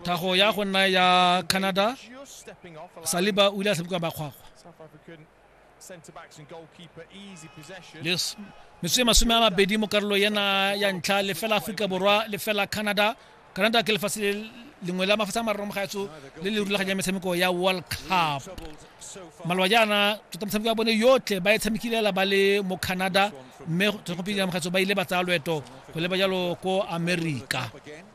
thago ya go nna ya canada saliba o ile a sebeka makgwakgwa metsotso e masome a mabedi mo karolo ena ya ntlha lefela aforika borwa lefela canada canada ke lefatshe lengwe la mafatshe a mararo mogaetso le le rulaganya metshameko ya world cup maloba jaana tota motshameko ya bone yotlhe ba e tshamekilela ba le mo canada mme gopedi ya mogaetso ba ile ba tsaya loeto go leba jalo ko america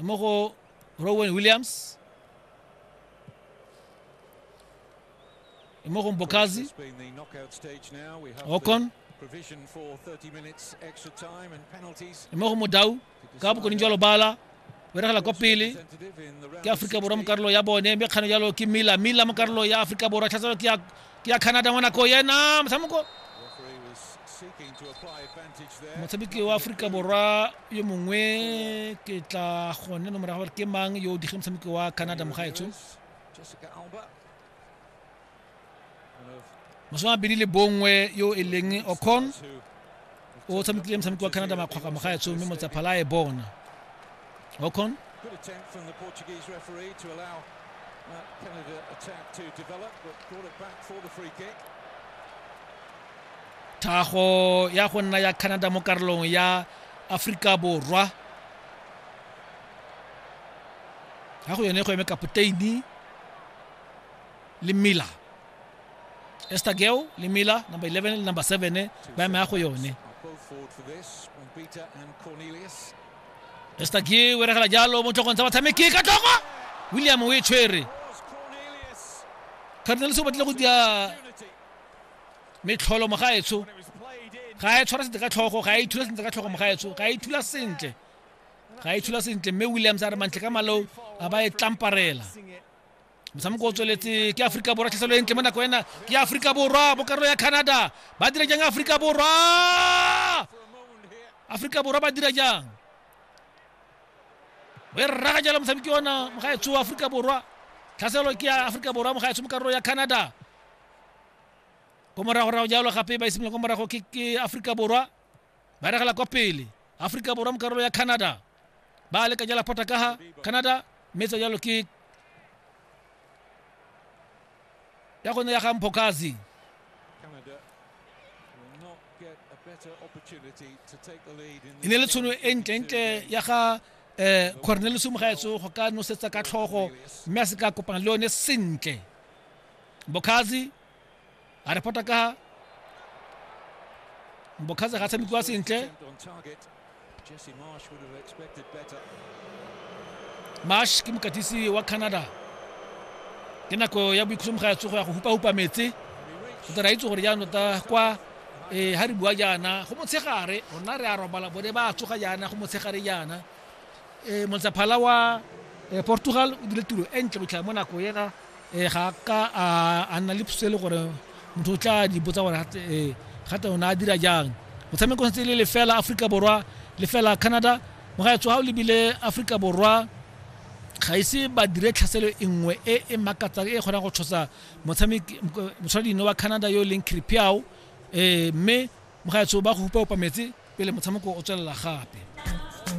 mo go rowen williams mo go mbokazi okon mo go modau ka bokone jwa lobala beregela kwa pele ke aforika borwa mo karolo ya bone mme kgano jalo ke mila mila mo karolo ya aforika borwa tlhatselo ke ya ke ya canada ngwana ko yena motshameko motshameki wa aforika borwa yo mongwe ke tla gone no morago gore ke mang yo o digeng motshameki wa canada mogaetsho masome a mabedi le bongwe yo e leng ocon o tshamekile motshameko wa canada makgwakga mogaetsho mme motsaphala e bona okon thago ya go nna ya canada mo karolong ya aforika borwa ya go yone go eme kapoteini le miller esta geo le miller number 11 le number 7 eh, ba eme ya go yone esta geo o regela jalo mo tlhogong tsa batshameki ka tlhogo william o e tshwere cardinals o batlile go dia metlholo mogaetsho ga e tshwara sentle ka tlhogo ga e ithula sentle ka tlhogo mogaetsho ga e ithula sentle ga e ithula sentle mme williams a re mantle ka maleo a ba e tlamparela motshameko o tsweletse ke aforika borwa tlhaselo e ntle mo nako ena ke aforika borwa mo karolo ya canada ba dira jang aforika borwa aforika borwa ba dira jang o e rraga jalo motshameki ona mogaetsho wa aforika borwa tlhaselo ke ya aforika borwa mogaetsho mo karolo ya canada ko moragorago jalo gape ba isimolola ko morago ke ke aforika borwa ba regela kwa pele aforika borwa mo karolo ya canada ba leka jala phota ka ga canada mme tsa jalo ke ya gone ya ga mphokazi Canada will not get a better opportunity to take the lead in e ne le tshono e ntlentle ya ga eh cornelius mogaetso go ka nosetsa ka tlhogo mme a se ka kopana le yone sentle bokhazi a re pota ka bokhaza ga tshamekiwa sentle marsh ke mokatisi wa canada ke nako ya boikhusomo ga ya tsogo ya go hupa-hupa metse o tla ra itse gore jaanong ta kwa um ga re bua jaana go motshegare rona re a robala bone ba tsoga jaana go motshegare jaana e motsaphala wa e, portugal o dile tiro e ntle botlhaya mo nako ena e, ga ka a nna le phuso e le gore motho o tla di botsa gore gate o ne a dira jang motshameko setse e le lefela aforika borwa lefela canada mogaetso ga o lebile aforika borwa ga ise ba dire tlhaselo e nngwe e e makatsang e kgonang go tshosa motshameki motshwaradino wa canada yo e leng cripiao um mme mogaetso ba go hupa opa metsi pele motshameko o tswelela gape